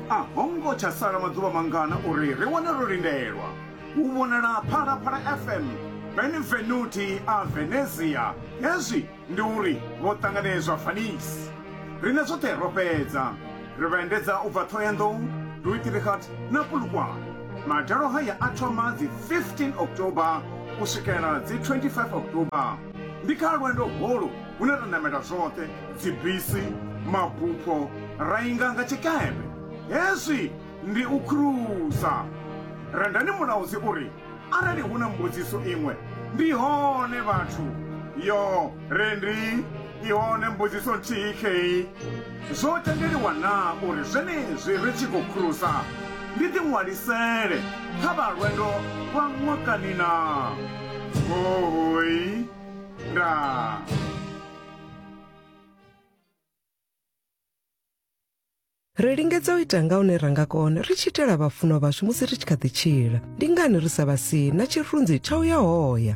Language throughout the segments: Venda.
a ho ngo tsha sala maḓuvha mangana uri ri wane ro lindelwa u vhonala phalaphala fm benvenuti a venezia hezwi ndi uri vho ṱanganedzwa fanisi rine zwoṱhe ro fhedza ri vha endedza u bva thohoyandou duitirikhat na pulukwane madalo haya a thoma dzi 15 october u swikela dzi 25 october Ndi kha lwendo holu hune ra namela zwoṱhe, dzibisi, mabupho, ra inga nga tshikepe. Hezwi ndi u khurusa. Rendani Mulaudzi u ri, Arali hu na mbudziso iṅwe, ndi hone vhathu. Yoo, Rendi, i hone mbudziso nthihi khei. Zwo tendeliwa naa uri zwenezwi ri tshi khou khurusa ndi ḓiṅwalisele kha vha lwendo lwa ṅwakani naa? Hoooi! Ndaa! Ri lingedza u ita nga hune ra nga kona ri tshi itela vhafunwa vhashu musi ri tshi kha ḓi tshila. Ndi ngani ri sa vha sie na tshirunzi tsha u ya hoya?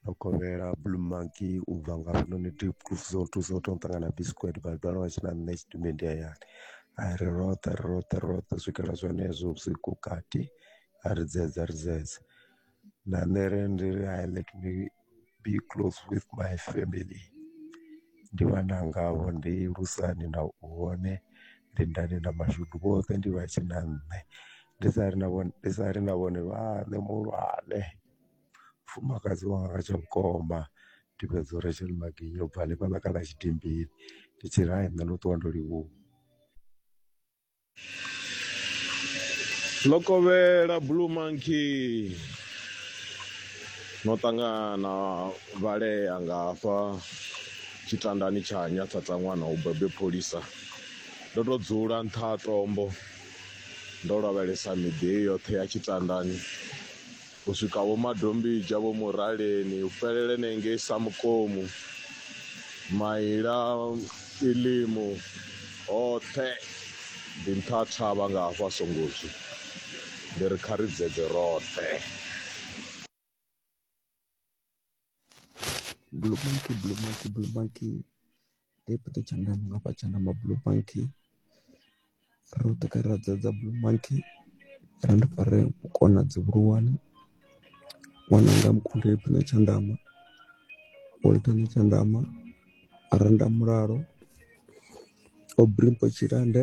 Ndo kovhela blue monkey u bva nga hafhanoni Diepkloof zwo thusa u tou ṱangana na Bisquet vha dovha vha tshi na nṋe tshidimedindi hayani, ha ri roṱhe ri roṱhe ri roṱhe u swikela zwenezwo vhusiku vhukati ha ri dzedza ri dzedza na nṋe ri ndi ri hai let me be close with my family. ndi vhana ngavho ndi lusani na u hone lindani na mashudu vhoṱhe ndi vha tshina nṋe ndi sa ri na vhone ndi sa ri na vhone vhaṋe muhulwane mufumakadzi wanga tsha vhukoma ndi fhedza u Rachel Magiya ubva hanefhaḽa kha ḽa Tshidimbili ndi tshiri hai nṋe no ṱuwa ndo livhuwa. Lokovhela Blue Monkey no ṱangana vhalea nga hafha tshitandani tsha nyathatsa ṅwana u bebe pholisa ndo to dzula nṱha ha tombo ndo lavhelesa miḓi heyi yoṱhe ya tshitandani u swika Vho Madombidzha, Vho Muraleni, u fhelele na ngei Samukomu, Maila, Ilimu, hoṱhe ndi nṱha thavha nga hafha Songozwi. Ndi ri kha ri dzedze roṱhe. Blue Bank, Blue Bank, Blue Bank nda i peta tshanḓa ndi nga fha tshanḓa ma Blue Bank, roṱhe kha ri a dzadza Blue Bank, ra ndi fare vhukona dzi vhuhulwane, ṅwananga mukunde i pfhi na tshanḓama, o ita na tshanḓama, a renda mulalo, o bvisa tshilande.